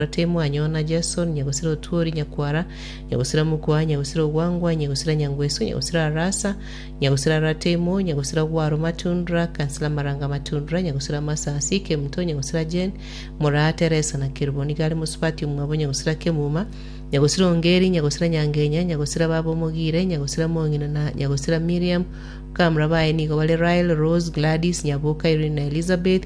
Korwa timwanyona Jesu, onye gosira otwori, nyakwara, onye gosira mokwa, onye gosira ogwangwa, onye gosira nyangwesu, onye gosira arasa, onye gosira ara timo, onye gosira gwaro matundra, kansila maranga matundra, onye gosira masasi, kemto, onye gosira Jen, moraa Teresa na kerubo nigo are mosubati omwabo, onye gosira kemuma, onye gosira ongeri, onye gosira nyangenya, onye gosira baba omogire, onye gosira mong'ina, na onye gosira Miriam, bakamura baye nigo bare Rael, Rose, Gladys, Nyaboka, Irene na Elizabeth,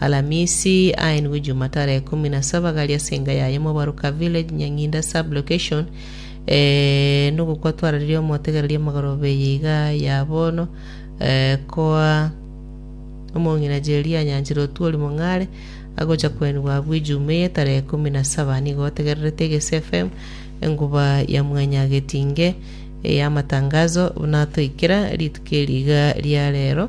Alamisi, aenigwe Juma tarehe ikomi na saba gari ase enga yaye Mobaruka Village, Nyang'inda Sub-Location. Eh, nogokwa twararirie omotegereria amagoroba eye iga ya bono, eh, koa omong'ina Jeria anyanchire otuori mong'are agocha koenigwa abwo Ijuma eye tarehe ikomi na saba. Nigo otegererete Egesi FM, enguba ya mwanyagetinge ey'amatangazo, buna toikera rituko eri iga ria rero.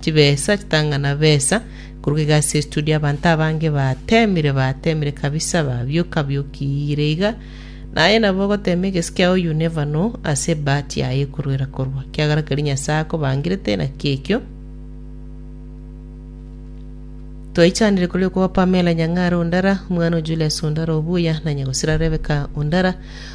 chibesa chitang'ana besa korwa egasi ya studio abanto abange batemire batemire kabisa babioka biokire iga naye nabo ogotema egesi kiao you never know ase ebahati yaye ekorwera korwa kiagera keri nyasaye akobangirete naki ekio twaichanire kuri okuba pamela nyang'ara ondara omwana o julius ondara obuya na nyagosira rebeka ondara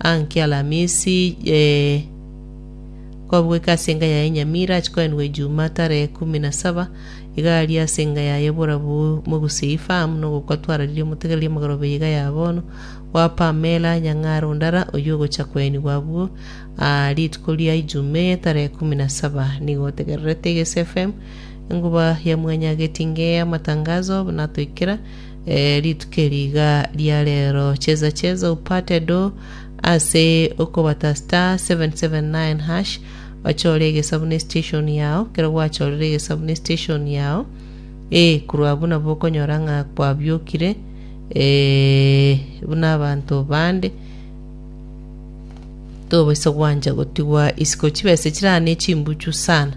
Ang'e Alamisi, eh, kwabugoika ase enga yaye Nyamira, achia koenigwa Ejuma tarehe kumi na saba, iga aria ase enga yaye borabu mogusie ifahamu nogokwa twararirie omotegereria omogorobe y'iga ya bono bwa Pamela Nyang'aro Ndara, oyio ogochia koenigwa abwo aa rituko ria Ijuma eye tarehe kumi na saba. Nigo otegererete Igese FM, enkuba ya mwanyagetinge y'amatangazo, buna toikera Rituko eri iga ria reero cheza cheza opate do ase okobata star 779# ochore egesabu ne station yao ekero gwachorire egesabu ne station yao eh korwa abwo nabo okonyora ng'a kwabiokire eh, buna abanto bande tobaisa gwancha gotigwa isiko chibesa chirane chimbuchu sana